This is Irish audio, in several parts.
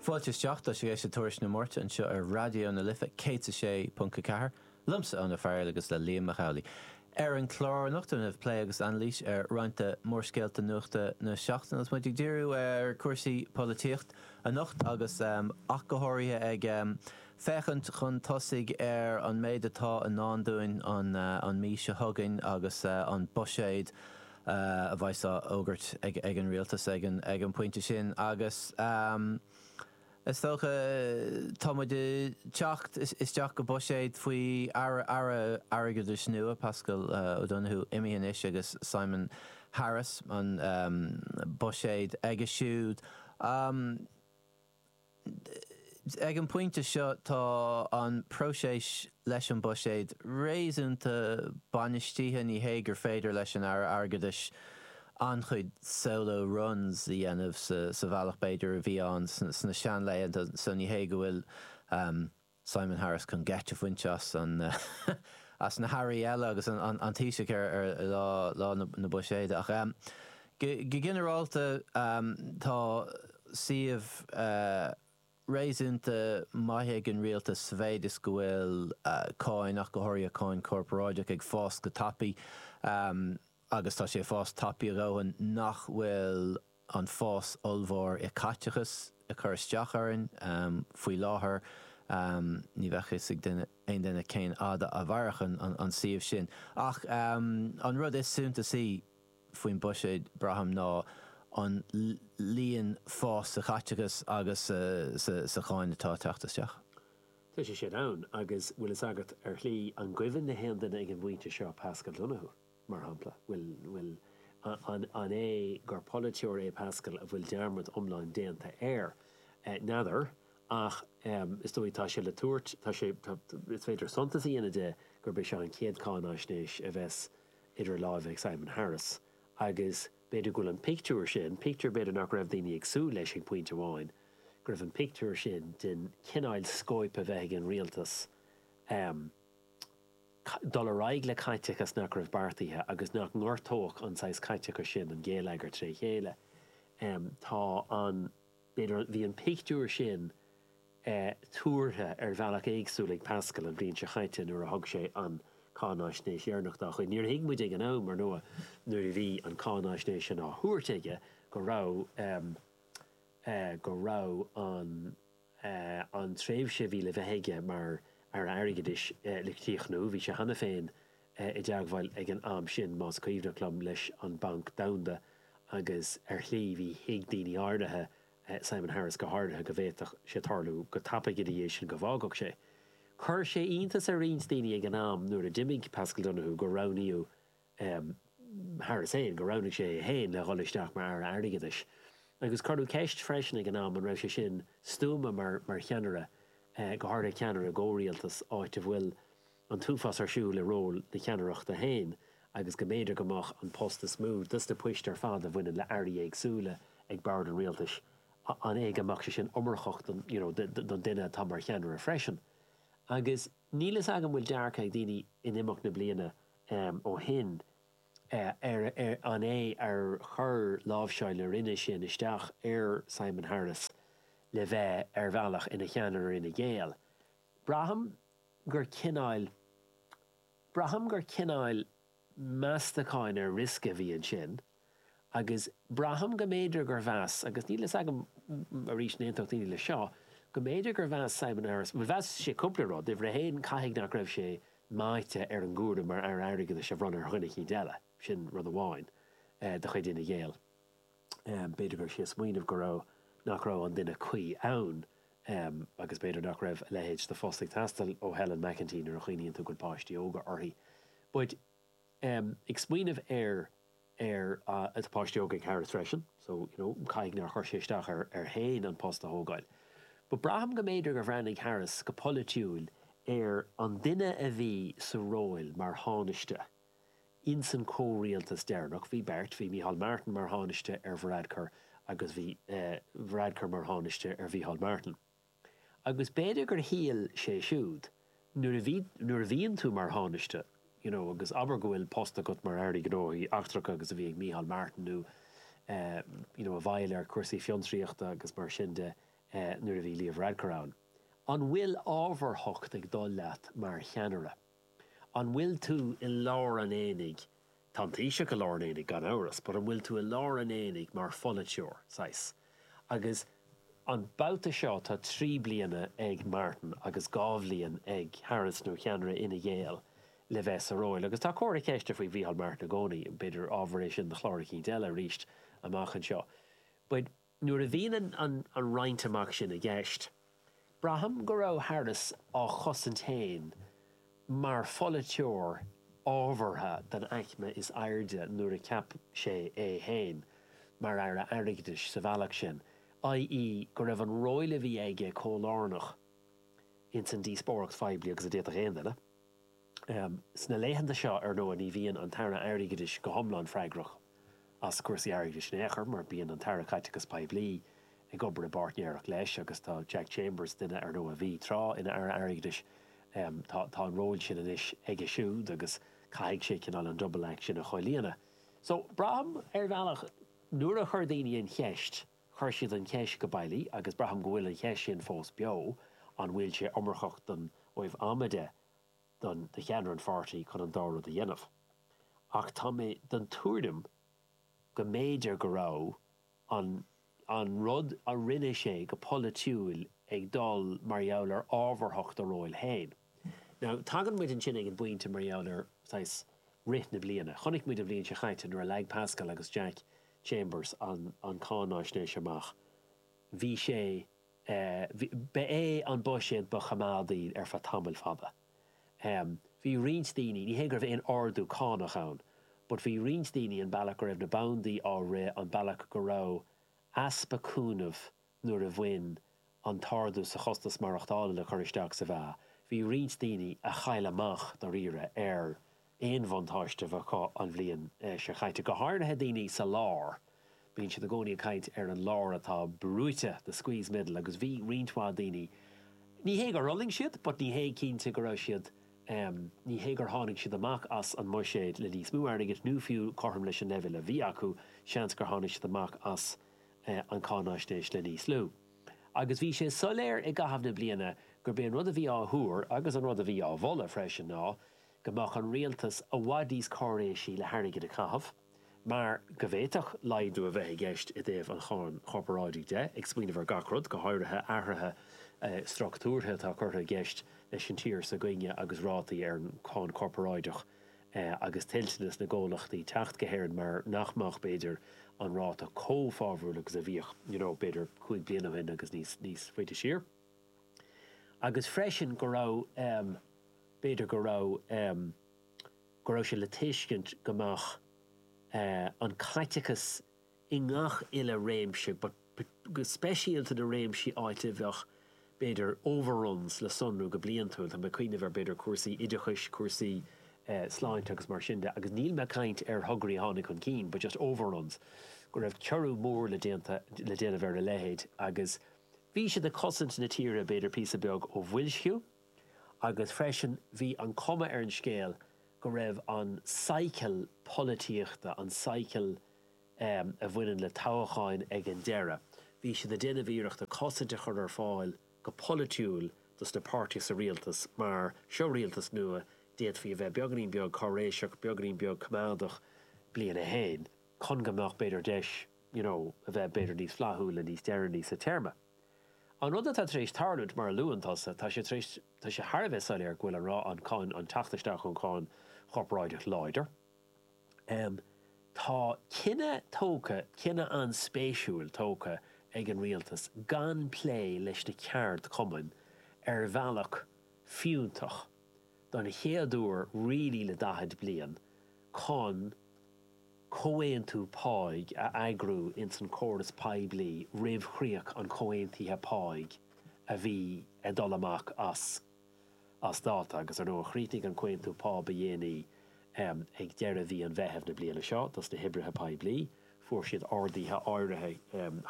Fáilte isteach, tá sibh ag éisteacht le Tuairisc na Máirte anseo ar Raidió na Life 106.4, liomsa, Eoin Ó Fearghaíl agus le Liam Mac Amhlaigh. Ar an chlár anocht déanfaimid plé agus anailís ar roinnt de mhórscéalta nuachta na seachtaine agus muid ag díriú ar cúrsaí polaitíocht anocht agus ach go háirithe ag féachaint chun tosaigh ar an méid atá i ndán dúinn an mhí seo chugainn agus an buiséad a bheidh á fhógairt ag an rialtas ag an bpointe sin agus is dócha tá muid ag teacht isteach go buiséad faoi Aire Airgeadais nua, Paschal Donohoe imithe anois agus Simon Harris, an buiséad aige siúd. Ag an bpointe seo tá an próiseas leis an mbuiséad réasúnta bainistithe, ní hé gur féidir leis an Aire Airgeadais an-chuid solo runs a dhéanamh sa bhealach b'fhéidir a bhí ann sna seanlaethanta so ní hé go bhfuil Simon Harris chun geit a bhaint as na hairí eile agus an Taoiseach ar lá na buiséide. Ach go ginearálta tá suíomh réasúnta maith ag an rialtas sa mhéid is go bhfuil cáin, ach go háirithe cáin chorparáideach, ag fás go tapaidh. agus tá sé ag fás tapa a dhóthain nach bhfuil an fás ollmhór i caiteachas ag cur isteach orainn faoi láthair. Ní bheadh fhios ag aon duine cén fhaid a mhairfidh an suíomh sin. Ach an rud is suntasaí faoin buiséad, braithim, ná an líon fás sa chaiteachas agus sa cháin atá ag teacht isteach. Tá sé sin ann, agus bhfuil fhios agat, ar shlí, an gcuimhin le haon duine ag an bpointe seo Paschal Donohoe? mar shampla. Bhuel, an é gur polaiteoir é Paschal a bhfuil dearmad iomlán déanta air? N'fheadar, ach is dóigh tá sé le tabhairt, tá sé, is féidir suntas a dhéanamh de gurb é seo an chéad cháináisnéis a bheas idir lámha ag Simon Harris agus b'fhéidir go bhfuil an pictiúr sin, pictiúr b'fhéidir nach raibh daoine ag súil leis ag pointe amháin, go raibh an pictiúr sin den chineáil scóip a bheith ag an rialtas, dul ar aghaidh le caiteachas nach raibh beartaithe agus nach ngortódh an saghas caiteachais sin an geilleagar tré chéile. Tá an, b'fhéidir, bhí an pictiúr sin tuartha ar bhealach éagsúil ag Paschal an bhliain seo chaite nuair a thug sé an cháináisnéis dheireanach dá chuid. Níor thuig muid ag an am, ar ndóigh, nuair a bhí an cháináisnéis sin á thabhairt aige go raibh, go raibh an. an tréimhse a bhí le bheith aige mar Aire Airgeadais le críochnú. Bhí sé cheana féin i dteagmháil ag an am sin, más cuimhneach liom, leis an Banc Domhanda agus ar shlí bhí, thuig daoine áirithe, Simon Harris go háirithe, go bhféadfadh sé tarlú go tapaidh ina dhiaidh sin go bhfágfadh sé. Chuir sé iontas ar roinnt daoine ag an am nuair a d'imigh Paschal Donohoe gur roghnaíodh Harris féin, gur roghnaigh sé é féin le dhul isteach mar Aire Airgeadais. Agus cuireadh ceist freisin ag an am an raibh sé sin stuama mar cheannaire, go háirithe ceannaire i gcomhrialtas, áit a bhfuil an t-uafás ar siúl i ról na ceannaireachta féin agus go mb'fhéidir go mbeadh an post is mó dos na poist ar fad a bhaineann le airí éagsúla ag bord an rialtais, an é go mbeadh sé sin iomarcach don you know don duine atá mar cheannaire freisin? Agus níl fhios agam bhfuil dearcadh ag daoine in imeacht na bliana ó shin, an é ar chuir láimhseáil na Roinne sin isteach ar Simon Harris le bheith ar bhealach ina cheannaire Fhine Gael? Braithim gur cineáil, braithim gur cineáil meastacháin ar riosca a bhí ansin. agus braithim go mb'fhéidir gur mheas, agus níl a fhios agam, arís, an aontódh daoine leis seo, go mb'fhéidir gur mheas Simon Harris, bhuel, mheas sé cúpla rud, uimhir a haon, caithfidh nach raibh sé meáite ar an gcúram mar Aire Airgeadais a bhronnadh ar dhuine eicínt eile, sin rud amháin de chuid Fhine Gael, b'fhéidir go raibh sé ag smaoineamh go raibh, nach raibh an duine cuí ann, agus b'fhéidir nach raibh a leithéid de phost ag teastáil ó Helen McEntee nuair a chuimhníonn tú go bhfuil páistí óga aici, but, ag smaoineamh ar, ar a, tá páistí óga ag Harris freisin so you know caithfidh nár chuir sé isteach air, air féin an post a thógáil but braithim go mb'fhéidir gur bhreathnaigh Harris go polaitiúil ar an duine a bhí sa róil mar Thánaiste ins an comhrialtas deireanach, bhí beirt, bhí Micheál Martin mar Thánaiste ar Varadkar agus bhí eh Varadkar mar Thánaiste ar Mhicheál Martin. Agus b'fhéidir gur shíl sé siúd, nuair a bhí, nuair a bhíonn tú mar Thánaiste, you know, agus abair go bhfuil post agat mar Aire Gnóthaí Eachtracha agus a bhí ag Micheál Martin nó eh, you know, i bhfeighil ar cúrsaí fiontraíochta agus mar sin de eh, nuair a bhí Leo Varadkar ann, an bhfuil ábharthacht ag dul leat mar cheannaire? An bhfuil tú i lár an aonaigh Tá an Taoiseach i lár an aonaigh gan amhras, but an bhfuil tú i lár an aonaigh mar pholaiteoir, saghas? Agus an babhta seo tá trí bliana ag Martin agus dhá bhliain ag Harris, nó cheannaire Fhine Gael, le bheith sa róil. Agus tá comhartha ceiste faoi Mhícheál Martin i gcónaí, b'fhéidir ábhar é sin do chlár eicínt eile arís amach anseo. But. Nuair a bhíonn an roinnt amach sin i gceist, braithim go raibh Harris á chosaint féin mar pholaiteoir ábhartha den aicme is airde nuair a cheap sé é féin mar Aire Airgeadais sa bhealach sin, i.e. go raibh an ról a bhí aige chomh lárnach insan díospóireacht phoiblí agus a d'fhéadfadh aon duine. Sna laethanta seo, ar ndóigh, ní bhíonn an tAire Airgeadais go hiomlán freagrach as cúrsaí airgeadais in aon chor, mar bíonn an tAire Caiteachais Poiblí ag obair i bpáirtnéireacht leis, agus tá Jack Chambers, duine, ar ndóigh, a bhí, tráth, ina Aire Airgeadais, tá an ról sin anois aige siúd, agus caithfidh sé, cineál, an 'double act' sin a chomhlíonadh. So, braithim, ar bhealach, nuair a chuir daoine an cheist, chuir siad an cheist go bailí, agus braithim go bhfuil an cheist sin fós beo, an bhfuil sé iomarcach don, ó thaobh ama de, don, do cheannaire an pháirtí chun an dá rud a dhéanamh. Ach tá mé den tuairim go mb'fhéidir go raibh an rud a rinne sé go polaitiúil ag dul mar gheall ar ábharthacht a róil féin. Now, tagann muid ansin ag an bpointe mar gheall ar, saghas, rith na bliana. Chonaic muid an bhliain seo chaite nuair a leag Paschal agus Jack Chambers an cháinaisnéis amach, bhí sé, Ba é an buiséad ba choimeádaí ar feadh tamall fada. Bhí roinnt daoine, ní hé go raibh aon ardú cánach ann, but bhí roinnt daoine an bealach go raibh na banndaí á rith, an bealach go raibh easpa cúnaimh nuair a bhain an t-ardú sa chostas maireachtála le cur isteach sa mheá, bhí roinnt daoine a chaill amach dáiríre ar aon bhuntáiste a bheith acu an bhliain seo chaite, go háirithe daoine sa lár. Bíonn siad i gcónaí ag caint ar an lár atá brúite, the squeezed middle, agus bhí roinnt mhaith daoine, ní hé gur fhulaing siad, but ní hé cinnte go raibh siad, ní hé gur tháinig siad amach as an mbuiséad le níos mó airgid, nó fiú cothrom leis an leibhéal a bhí acu, seans gur tháinig siad amach as an cáinaisnéis le níos lú. Agus bhí sé soiléir i gcaitheamh na bliana gurb é an rud a bhí á thuar, agus an rud a bhí á mholadh freisin, ná, go mbeadh an rialtas i bhfad níos cáiréisí le hairgead a chaitheamh mar go bhféadfadh laghdú a bheith i gceist i dtaobh an cháin chorparáidigh de, ag smaoineamh ar gach rud, go háirithe athruithe structúrtha atá curtha i gceist leis an tír s'againne agus rátaí ar an cháin chorparáideach agus toilteanas na gcomhlachtaí teacht go hÉirinn mar nach mbeadh, b'fhéidir, an ráta chomh fabhrúil agus a bhíodh, you know, b'fhéidir cúig bliana ó shin agus níos faide siar. agus freisin go raibh, b'fhéidir go raibh, go raibh sé le tuiscint go mbeadh an caiteachas i ngach uile réimse, but speisialta na réimsí áit a bheadh, b'fhéidir, overruns le sonrú go bliantúil, tá mé ag cuimhneamh ar, b'fhéidir, cúrsaí oideachais, cúrsaí sláinte agus mar sin de, agus níl mé ag caint ar thograí a tháinig chun cinn but just overruns, go raibh ciorrú mór le déanamh ar a leithéid agus. Bhí siad ag cosaint na tíre b'fhéidir píosa beag ó bhoilsciú agus freisin bhí an cuma ar an scéal go raibh an cycle polaitíochta, an cycle a bhaineann le toghcháin ag an deireadh, bhí siad ag déanamh iarrachta cosaint a chur ar fáil go polaitiúil dos na páirtithe sa rialtas mar seo rialtas nua, d'fhéadfaí a bheith beagainín beag cáiréiseach, beagainín beag coimeádach, bliain a haon, chun go mbeadh b'fhéidir deis you know, a bheith b'fhéidir níos flaithiúla níos deireanaí sa téarma. An rud atá tar éis tarlúint, mar a luann tusa, tá sé tar éis, tá sé thar a bheith soiléir go bhfuil an rá, an cáin, an teacht isteach ón gcáin chorparáideach láidir. Em, tá cinneadh tógtha, cinneadh an-spéisiúil tógtha ag an rialtas gan plé leis na ceardchumainn ar bhealach fiúntach, don chéad uair really le daichead bliain, chun. comhaontú páigh a eagrú ins an córas poiblí roimh chríoch an chomhaontaithe páigh a bhí ag dul amach as dáta agus, ar ndóigh, chríochnaigh an comhaontú pá ba dhéanaí ag deireadh mhí an Mheithimh na bliana seo dos na hoibrithe poiblí. Fuair siad arduithe áirithe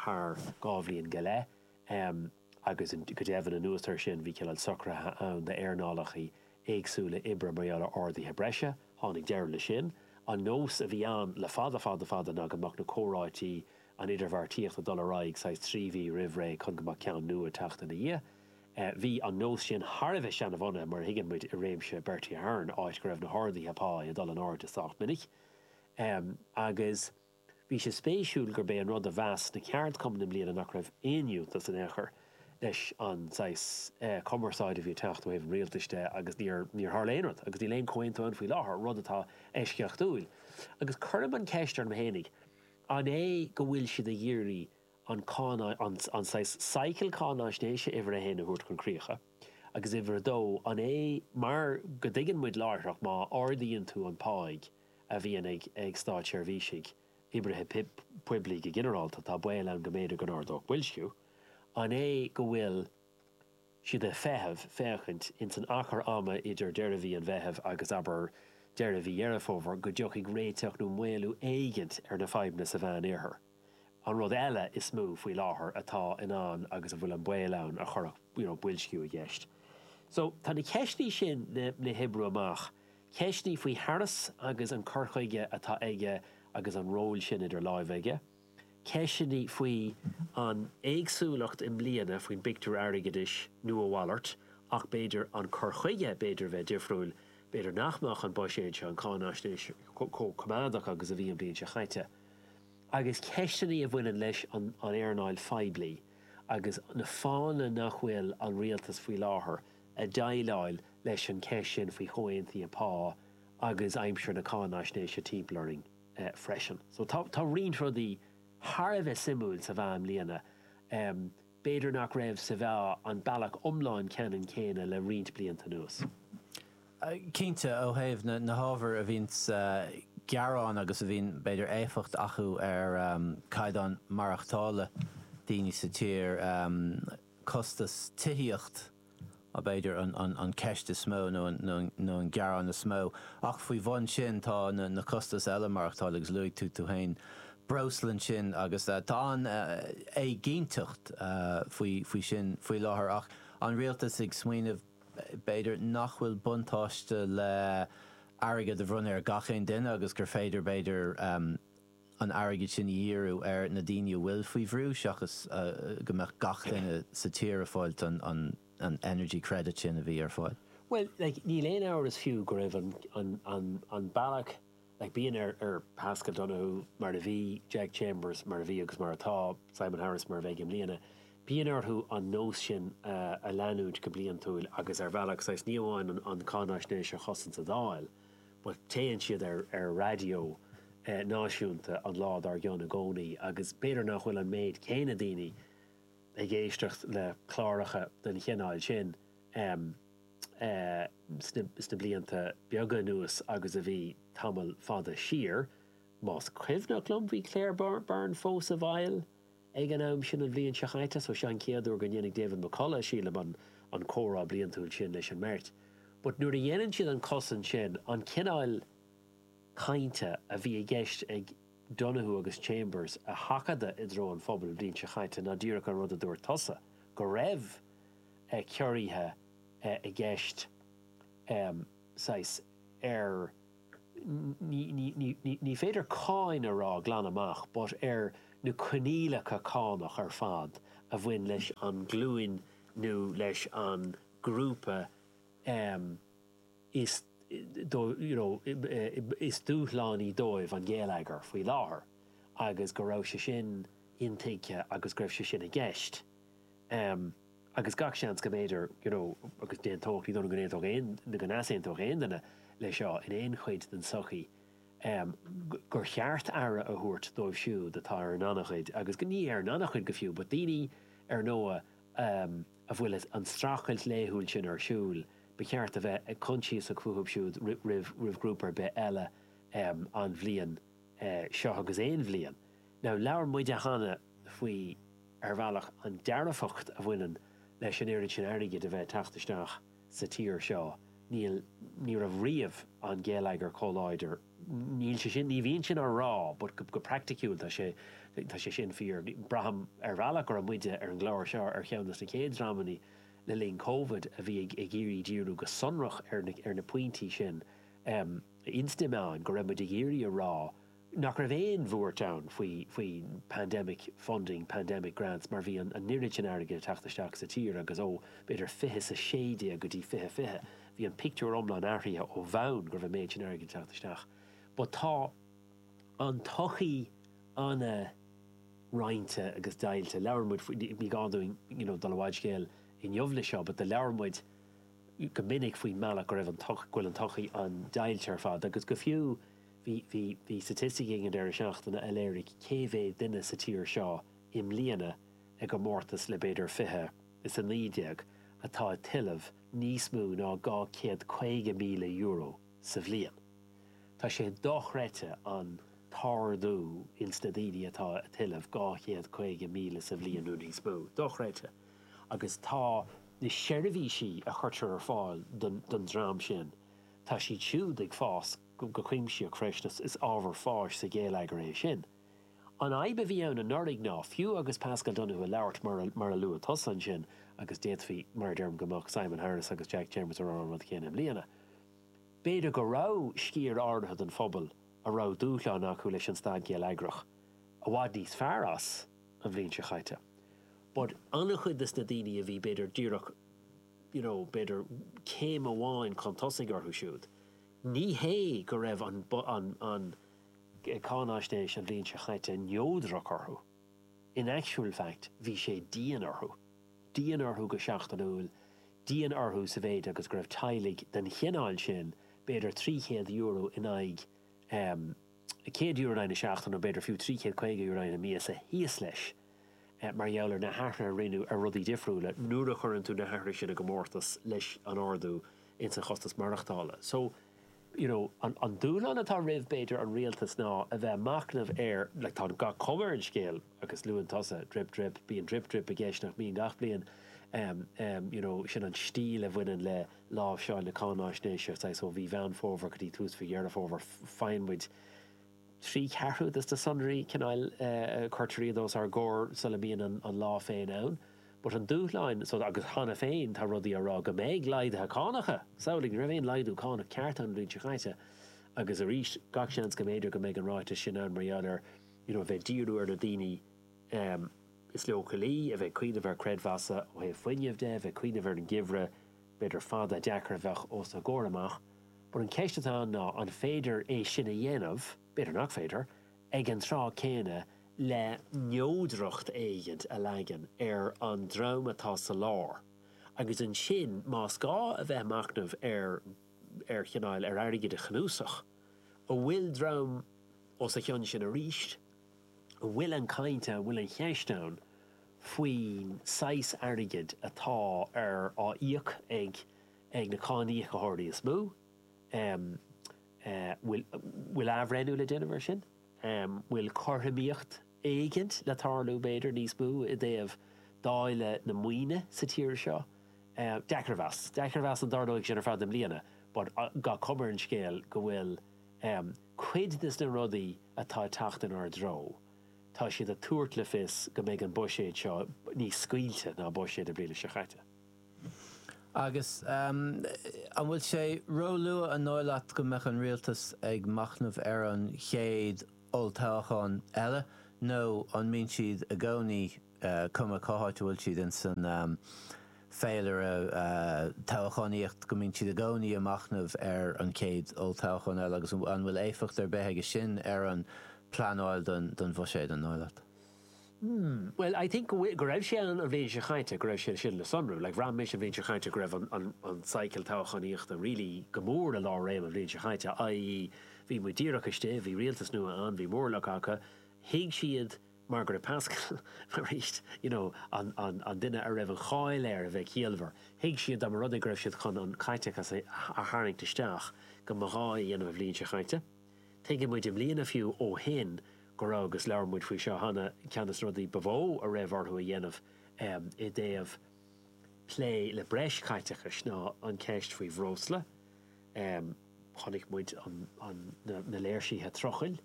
thar dhá bhliain go leith. agus go deimhin anuas air sin bhí cineál socraithe ann d'earnálachaí éagsúla oibre mar gheall ar arduithe breise. Tháinig deireadh leis sin. An nós a bhí ann le fada, fada, fada ná go mbeadh na comhráití, an idirbheartaíocht ag dul ar aghaidh saghas trí mhí roimh ré chun go mbeadh ceann nua ag teacht ina dhiaidh. Bhí an nós sin thar a bheith seanbhunaithe mar a thuigeann muid i réimeas Bertie Ahern, áit go raibh na harduithe pá ag dul in airde sách minic agus, Bhí sé spéisiúil gurb é an rud a mheas na ceardchumainn i mbliana nach raibh aon fhiúntas, in aon chor, leis an saghas cumarsáide a bhí ag teacht ó thaobh an rialtais de agus níor tharla aon rud agus níl aon chomhaontú ann faoi láthair, rud atá eisceachtúil. Agus cuirim an cheist orm féinig, an é go bhfuil siad ag iarraidh an cáin, saghas cycle cáináisnéise uimhir a haon a thabhairt chun críocha? Agus uimhir a dó, an é mar go dtuigeann muid láithreach má ardaíonn tú an páigh, a bhíonn ag, ag státseirbhísigh, oibrithe poiblí go ginearálta, tá baol ann go mb'fhéidir go n-ardódh boilsciú. An é go bhfuil siad ag feitheamh, féachaint, ins an achar ama idir deireadh mhí an Mheithimh agus, abair, deireadh mhí Dheireadh Fómhair, go dtiocfaidh réiteach nó maolú éigint ar na fadhbanna sa Mheán-Oirthear? An rud eile is mó faoi láthair atá ann agus a bhfuil an baol ann a chuirfeadh you know boilsciú i gceist. So, tá na ceisteannaí sin le hoibriú amach, ceisteannaí faoi Harris agus an cur chuige atá aige agus an ról sin idir láimhe aige, ceisteannaí faoi an éagsúlacht i mbliana faoin bpictiúr airgeadais nó a mhalairt ach b'fhéidir an cur chuige b'fhéidir a bheith difriúil, b'fhéidir nach mbeadh an buiséad seo, an cháinaisnéis, chomh coimeádach agus a bhí an bhliain seo chaite. agus ceisteannaí a bhaineann leis an earnáil phoiblí agus na fáthanna nach bhfuil an rialtas faoi láthair ag déileáil leis an gceist sin faoi chomhaontuithe pá agus aimsir na cáinaisnéise timpeall orainn freisin. So tá roinnt rudaí thar a bheith suimiúil sa mheá i mbliana. B'fhéidir nach raibh sa mheá an bealach iomlán ceannann céanna le roinnt blianta anuas. Cinnte, ó thaobh na hábhair a bhíonns ag gearán agus a bhíonn, b'fhéidir, éifeacht acu ar chaighdeán maireachtála daoine sa tír, costas tithíochta, b'fhéidir, an cheist is mó nó an gearán is mó. Ach faoi bhun sin tá na costais eile, maireachtáil agus luaigh tú tú féin breosla ansin agus tá an éiginnteacht faoi sin faoi láthair ach an rialtas ag smaoineamh b'fhéidir nach bhfuil buntáiste le airgead a bhronnadh ar gach aon duine agus gur féidir b'fhéidir an airgead sin a dhíriú ar na daoine a bhfuil faoi bhrú seachas go mbeadh gach duine sa tír ag fáil an energy credit sin a bhí ar fáil. Bhuel, like, níl aon amhras fiú go raibh an bealach, like, bíonn ar Paschal Donohoe, mar a bhí, Jack Chambers, mar a bhí agus mar atá, Simon Harris, mar a bheidh i mbliana, bíonn orthu an nós sin a leanúint go bliantúil agus ar bhealach, saghas, ní amháin an cháinaisnéis a chosaint sa Dáil, But téann siad ar raidió náisiúnta an lá dár gcionn i gcónaí agus b'fhéidir nach bhfuil an méid céanna daoine ag éisteacht le cláracha den chineál sin sna blianta beaga anuas agus a bhí tamall fada siar. Más cuimhneach liom bhí Claire Byrne fós i bhfeighil ag an am sin an bhliain seo chaite, so seo an chéad uair go ndéanfaidh David McCullagh, sílim, an an comhrá bliantúil sin leis an mbeirt. But nuair a dhéanann siad an cosaint sin, an cineáil cainte a bhí i gceist ag Donohoe agus Chambers a sheachadadh i dtreo an phobail an bhliain seo chaite ná díreach an rud a dúirt tusa, go raibh ciorruithe i gceist, saghas, ar ní féidir cáin a rá glan amach, but ag rá coinníollacha cánach ar fad a bhain leis an ghlúin nó leis an ghrúpa is you know is dúshlánaí dóibh an geilleagar faoi láthair agus go raibh sé sin intuigthe agus go raibh sé sin i gceist. agus gach seans go mb'fhéidir, you know, agus d'aontódh, ní dóigh liom go n-aontódh aon, nó go n-easaontódh aon duine leis seo in aon chuid den tsochaí, em, gur cheart aire a thabhairt dóibh siúd atá ar an ngannchuid agus go, ní ar an ngannchuid go fiú, but daoine, ar ndóigh, em, a bhfuil an streachailt laethúil sin ar siúl, ba cheart a bheith coinsiasach fúthu siúd roimh, roimh ghrúpa ar bith eile, em, an bhliain, eh, seo agus aon bhliain. Now, labhair muid cheana faoi, ar bhealach, an dearfacht a bhaineann leis an oiread sin airgid a bheith ag teacht isteach sa tír seo. Níl, ní raibh riamh an geilleagar chomh láidir, níl sé sin, ní bhíonn sin á rá but go, go praiticiúil tá sé, tá sé sin fíor. Braithim, ar bhealach, go raibh muide ar an gclár seo ar cheann de na chéad dreamanna le linn Covid a bhí ag, ag iarraidh díriú go sonrach ar na, ar na pointí sin. Sa mhéid, go raibh muid ag iarraidh a rá, nach raibh aon bhuairt ann faoi pandemic funding, pandemic grants mar bhí an oiread sin airgid ag teacht isteach sa tír agus ó, b'fhéidir, fiche is a sé déag go dtí fiche fiche, bhí an pictiúr iomlán athraithe ó bhonn go raibh an méid sin airgid ag teacht isteach. But tá an tsochaí an-roinnte agus deighilte. Labhair muid faoi, ní gá dúinn you know dul i bhfad scéil inniu leis seo, but labhair muid go minic faoin mbealach go raibh an tsochaí, go bhfuil an tsochaí an-deighilte ar fad agus go fiú, Bhí staitisticí ag an deireadh seachtaine a léirigh cé mhéad duine sa tír seo i mbliana i gcomórtas le b'fhéidir fiche is a naoi déag atá ag tuilleamh níos mó ná dhá chéad caoga míle euro sa bhliain. Tá sé dochreidte an t-ardú ins na daoine atá ag tuilleamh dhá chéad caoga míle sa bhliain nó níos mó. Dochreidte. Agus tá na seirbhísí a chuirtear ar fáil don dream sin, tá siad siúd ag fás go cuimsitheach freisin is ábhar fáis sa gheilleagar é sin. An fhadhb a bhí ann anuraidh ná, fiú agus Paschal Donohoe ag labhairt mar a luaigh tusa ansin, agus d'fhéadfaí, mar a deirim, go mbeadh Simon Harris agus Jack Chambers ag rá an rud chéanna i mbliana, b'fhéidir go raibh sciar áirithe den phobal a raibh dúshlán acu leis an staid gheilleagrach i bhfad níos fearr as an bhliain seo chaite. But an-chuid de na daoine a bhí, b'fhéidir, díreach, you know, b'fhéidir céim amháin chun tosaigh orthu siúd, Ní hé go raibh an Cáináisnéis an bhliain seo caite neodrach orthu, in actual fact bhí sé dian orthu, dian orthu go seachtainiúil, dian orthu sa mhéid agus go raibh teaghlaigh den chineál sin b'fhéidir €300 in aghaidh €100 in aghaidh na seachtaine, nó b'fhéidir fiú €350 in aghaidh na míosa, thíos leis mar gheall ar na hathruithe a rinneadh ar rudaí difriúla, nuair a chuireann tú na hathruithe sin i gcomórtas leis an ardú ins an chostas maireachtála. So, you know, an dúshlán atá roimh, b'fhéidir, an rialtas ná a bheith ag machnamh ar, like, tá gach cuma ar an scéal, agus luaigh tusa drip, drip, bíonn drip, drip i gceist, nach mbíonn, gach bliain, em, em, you know, sin an stíl a bhaineann le, láimhseáil na cáináisnéise, saghas ó mhí Mheán Fómhair go dtí tús mhí Dheireadh Fómhair, faigheann muid trí cheathrú de na sonraí, cineál, cuirtear iad os ár gcomhair sula mbíonn an lá féin ann. But an dúshlán, so agus cheana féin tá rudaí á rá go mbeidh laghduithe cánacha! Samhlaigh, ní raibh aon laghdú cánach ceart ann an bhliain seo caite agus arís gach seans go mb'fhéidir go mbeidh an ráiteas sin ann mar gheall ar, you know, bheith ag díriú ar na daoine is leochailí a bheith ag cuimhneamh ar chreidmheasanna ó thaobh fuinnimh de, a bheith ag cuimhneamh ar an geimhreadh b'fhéidir fada deacair a bheadh os a gcomhair amach. But an cheist atá ann ná an féidir é sin a dhéanamh, b'fhéidir nach féidir, ag an tráth céanna le neodracht éigin a leagan ar an dream atá sa lár agus ansin más gá a bheith ag machnamh ar ar chineál ar airgid a chnuasach a bhfuil dream os a chionn sin arís. a bhfuil an chaint a bhfuil an cheist ann faoin saghas airgid atá á íoc ag ag na cáiníocaitheoirí is mó em bhfuil bhfuil athbhreithniú le déanamh ar sin em bhfuil cothromaíocht éigint le tarlú b'fhéidir níos mó i dtaobh dáileadh na maoine sa tír seo em deacair a mheas deacair a mheas an dtarlóidh sin ar fad i mbliana but gach cuma ar an scéal go bhfuil Cuid de na rudaí atá ag teacht inár dtreo, tá siad ag tabhairt le fios go mbeidh an buiséad seo níos scaoilte ná buiséad na bliana seo caite. Agus an bhfuil sé róluath an dóigh leat go mbeadh an rialtas ag machnamh ar an chéad olltoghchán eile nó an mbíonn siad i gcónaí cuma cá háit a bhfuil siad ins an féilire toghchánaíochta, go mbíonn siad i gcónaí ag machnamh ar an chéad olltoghchán eile agus an bhfuil éifeacht ar bith aige sin ar an bpleanáil don bhuiséad, an dóigh leat? Hmm, bhuel, I think go bhfuil, go raibh sé ann an bhliain seo caite, go raibh sé sin le sonrú. Like, bhraith mise an bhliain seo caite go raibh an cycle toghchánaíochta really go mór i lár réime an bhliain seo caite, i.e. bhí muid díreach istigh, bhí rialtas nua ann, bhí móramh acu, thuig siad, mar gheall ar Paschal, arís, you know, an duine a raibh an cháil air a bheith ciallmhar, thuig siad dá mba rud é go raibh siad chun an caiteachas a tharraingt isteach, go mba ghá dóibh é a dhéanamh an bhliain seo chaite. Tuigeann muid i mbliana fiú ó shin go raibh, agus labhair muid faoi seo cheana, ceann de na rudaí ba mhó a raibh orthu a dhéanamh i dtaobh plé le breis caiteachais ná an ceist faoi bhreosla, chonaic muid na léirsithe trucail,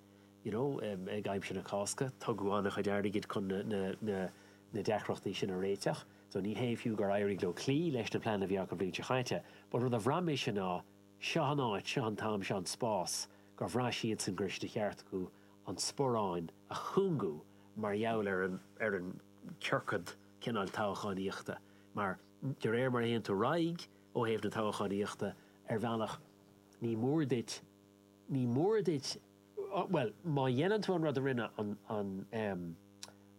you know, ag aimsir na Cásca, tugadh an-chuid airgid chun na deacrachtaí sin a réiteach. So ní hé fiú gur éirigh leo cloí leis na pleananna a bhí acu an bhliain seo chaite, but rud a bhraith mise ná, seo an áit, seo an t-am, seo an spás, gur bhraith siadsan go raibh sé de cheart acu an sparán a chúngú mar gheall ar an gciorcad cineáil toghchánaíochta. Mar, de réir mar a théann tú ar aghaidh ó thaobh na toghchánaíochta, ar bhealach, ní mór duit, Ní mór duit, bhuel, má dhéanann tú an rud a rinne an, an em,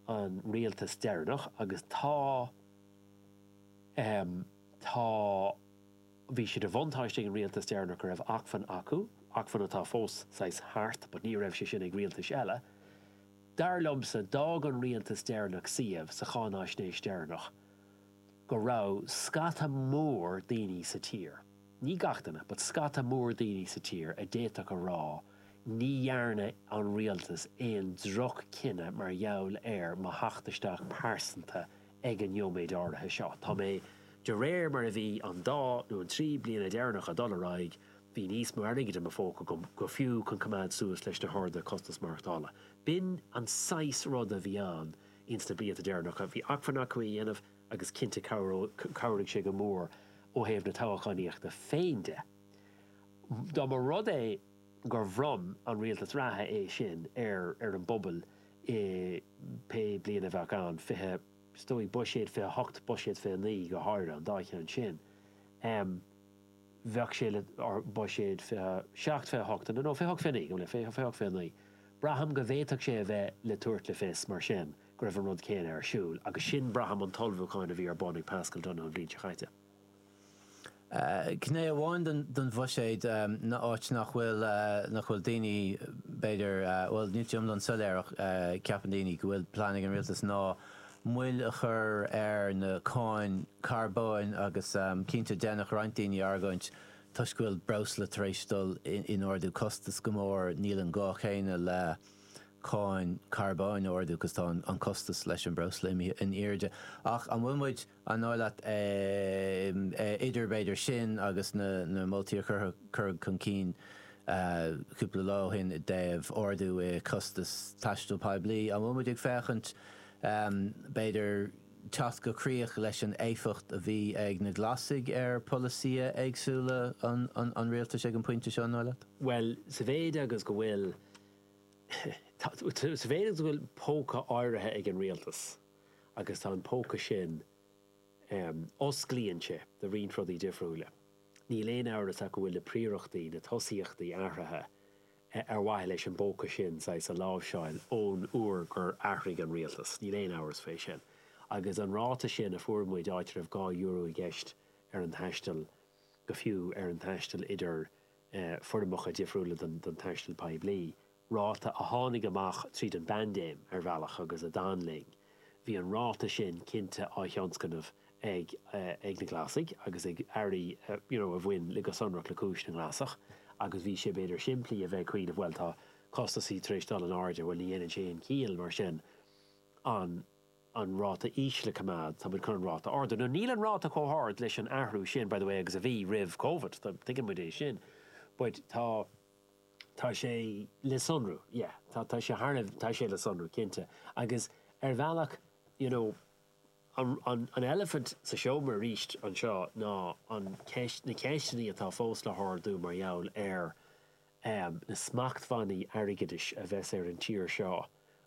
an rialtas deireanach agus tá, em, tá, bhí sé de bhuntáiste ag an rialtas deireanach go raibh acmhainn acu, acmhainn atá fós saghas thart but ní raibh sé sin ag rialtais eile. Dar liomsa, d'fhág an rialtas deireanach suíomh sa cháináisnéis deireanach go raibh scata mór daoine sa tír, Ní gach duine, but scata mór daoine sa tír a d'fhéadfadh a rá, ní dhearna an rialtas aon droch-chinneadh mar gheall ar mo theacht isteach pearsanta ag an neoméid áirithe seo. Tá mé, de réir mar a bhí an dá nó an trí bliana deireanacha ag dul ar aghaidh, bhí níos mó airgid i mo phóca agam fiú chun coimeád suas leis na harduithe costas maireachtála. B'in an saghas ruda a bhí ann ins na blianta deireanacha. Bhí acmhainn acu é a dhéanamh. agus cinnte chabhraigh sé go mór ó thaobh na toghchánaíochta féin de. Dá mba rud é gur bhronn an rialtas reatha é sin ar ar an bpobal i pé bliain a bheadh ann, fiche, is dóigh buiséad 28, buiséad 29 go háirithe, an dá cheann sin, bheadh sé le, or buiséad 27, 28 no, no 28, 29, go bhfuil a fhios agat, 28, 29, braithim go bhféadfadh sé a bheith le tabhairt le fios mar sin. go raibh an rud céanna ar siúl, agus sin, braithim, an t-ullmhúchán a bhí ar bun ag Paschal Donohoe an bhliain seo chaite. Gné amháin den bhuiséad ná áit nach bhfuil, nach bhfuil daoine, b'fhéidir, bhuel, níl sé iomlán soiléir ach ceapann daoine go bhfuil plean ag an rialtas ná moill a chur ar na cáin carbóin agus cinnte déanfadh roinnt daoine argóint toisc go bhfuil breosla tar éis dul in ardú costas go mór, níl an gá céanna le. cáin carbóin a ardú agus tá an costas leis an mbreosla imithe in airde. Ach an bhfuil muid, an dóigh leat, idir b'fhéidir sin agus na moltaí a cuireadh chun cinn cúpla lá ó shin i dtaobh ardú i gcostas taistil poiblí, an bhfuil muid ag féachaint b'fhéidir teacht go críoch leis an éifeacht a bhí ag na Glasaigh ar pholasaithe éagsúla an rialtais ag an bpointe seo, an dóigh leat? Bhuel, sa mhéid agus go bhfuil. Is féidir go bhfuil póca áirithe ag an rialtas agus tá an póca sin, osclaíonn sé do roinnt rudaí difriúila. Níl aon amhras ach go bhfuil na príorachtaí, na tosaíochtaí athraithe ar mhaithe leis an bpóca sin, saghas, a láimhseáil ón uair gur athraigh an rialtas, níl aon amhras faoi sin. Agus an ráta sin a fuair muid, áit a raibh dhá euro i gceist ar an taisteal, go fiú ar an taisteal idir foirmeacha difriúla den taisteal poiblí, ráta a tháinig amach tríd an bpaindéim, ar bhealach, agus a d'fhan linn. Bhí an ráta sin cinnte á thionscnamh ag na Glasaigh agus ag airí, you know a bhain le, go sonrach le cúis na nGlasach agus bhí sé, b'fhéidir, simplí a bheith ag cuimhneamh, bhuel, tá costasaí tar éis dul in airde, bhuel, ní dhéanann sé aon chiall, mar sin, an. an ráta íseal a choimeád, tá muid chun an ráta a ardú. Now níl an ráta chomh hard leis an athrú sin, by the way, agus a bhí roimh Covid, tuigeann muid é sin, but tá, tá sé le sonrú, yeah, tá, tá sé thar a, tá sé le sonrú, cinnte. Agus ar bhealach, you know, an, an, an eilifint sa seomra aríst anseo ná an cheist, na ceisteannaí atá fós le hardú mar gheall ar, amh, na smachtbhannaí airgeadais a bheas ar an tír seo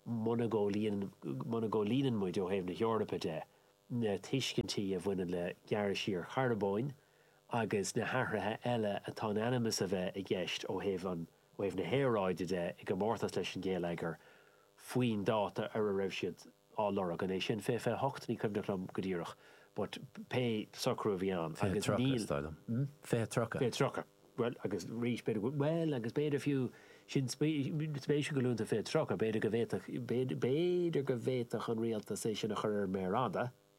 muna gcomhlíonann, muna gcomhlíonann muid, ó thaobh na hEorpa de, na tuiscintí a bhaineann le gearradh siar carbóin agus na hathruithe eile atá in ainm is a bheith i gceist ó thaobh an, ó thaobh na haeráide de i gcomórtas leis an ngeilleagar faoin dáta ar a raibh siad á lorg. An é sin fiche, fiche hocht? Ní cuimhneach liom go díreach but pé socrú a bhí ann Fiche agus tríocha, is dóigh liom. Hm? Fiche tríocha. Fiche tríocha. Bhuel, agus arís, b'fhéidir go, bhuel, agus b'fhéidir fiú, sin spéisiúil go luann tú fiche tríocha, b'fhéidir go bhféadfadh, b'fhéidir go bhféadfadh an rialtas é sin a chur ar an méar fhada,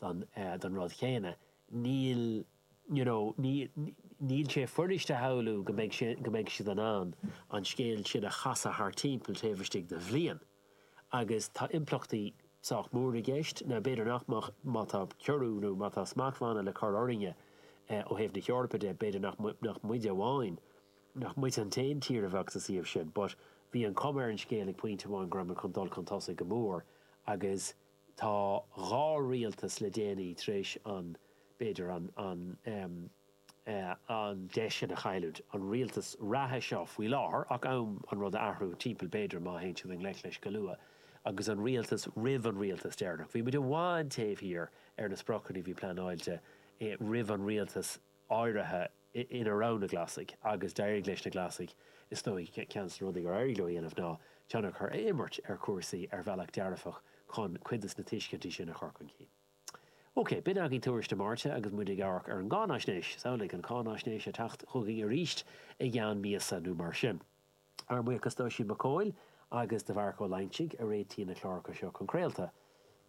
don, don rud chéanna. Níl, you know, níl, níl sé fuirist a shamhlú go mbeidh sé, go mbeidh siad in ann an scéal sin a chasadh thar timpeall taobh istigh de bhliain agus tá impleachtaí sách mór i gceist. Now, b'fhéidir nach mbeadh, má tá ciorrú nó má tá smachtbhanna le cur orainne ó thaobh na hEorpa de, b'fhéidir nach, nach muide amháin, nach muid an t-aon tír a bheadh sa suíomh sin but bhí an chuma ar an scéal ag pointe amháin go raibh muid chun dul chun tosaigh go mór agus Tá dhá rialtas le déanaí tar éis an, b'fhéidir, an, an em. eh. an deis sin a chailliúint, an rialtas reatha seo faoi láthair ach am an rud a athrú timpeall b'fhéidir má théann siad i ngleic leis go luath agus an rialtas roimh an rialtas deireanach. Bhí muid i bhfad taobh thiar ar na spriocanna a bhí pleanáilte, eh. roimh an rialtas eh. áirithe ina raibh na Glasaigh agus d'éirigh leis na Glasaigh, is dóigh, ceann de na rudaí gur éirigh leo a dhéanamh ná tionchar a imirt ar chúrsaí ar bhealach dearfach chun cuid de na tuiscintí sin a chur chun cinn. OK, b'in agaibh Tuairisc na Máirte agus muid ag amharc ar an gcáinaisnéis. Is amhlaidh an cáinaisnéis ag teacht chugainn arís i gceann míosa nó mar sin. Ár mbuíochas d'Oisín Mac Cóil agus do Mharc Ó Loingsigh a réitigh na cláracha seo chun craolta.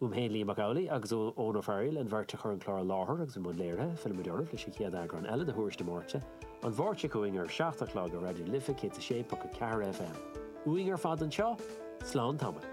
Uaim féin, Liam Mac Amhlaidh, agus ó Eoin Ó Fearghail, an bheirt a chuir an clár i láthair agus i mbun léirithe, fillfimid oraibh leis an chéad eagrán eile de Thuairisc na Máirte, an Mháirt seo chugainn ar a seacht a chlog ar Raidió na Life 106.4 FM. Uainn ar fad anseo, slán tamaill.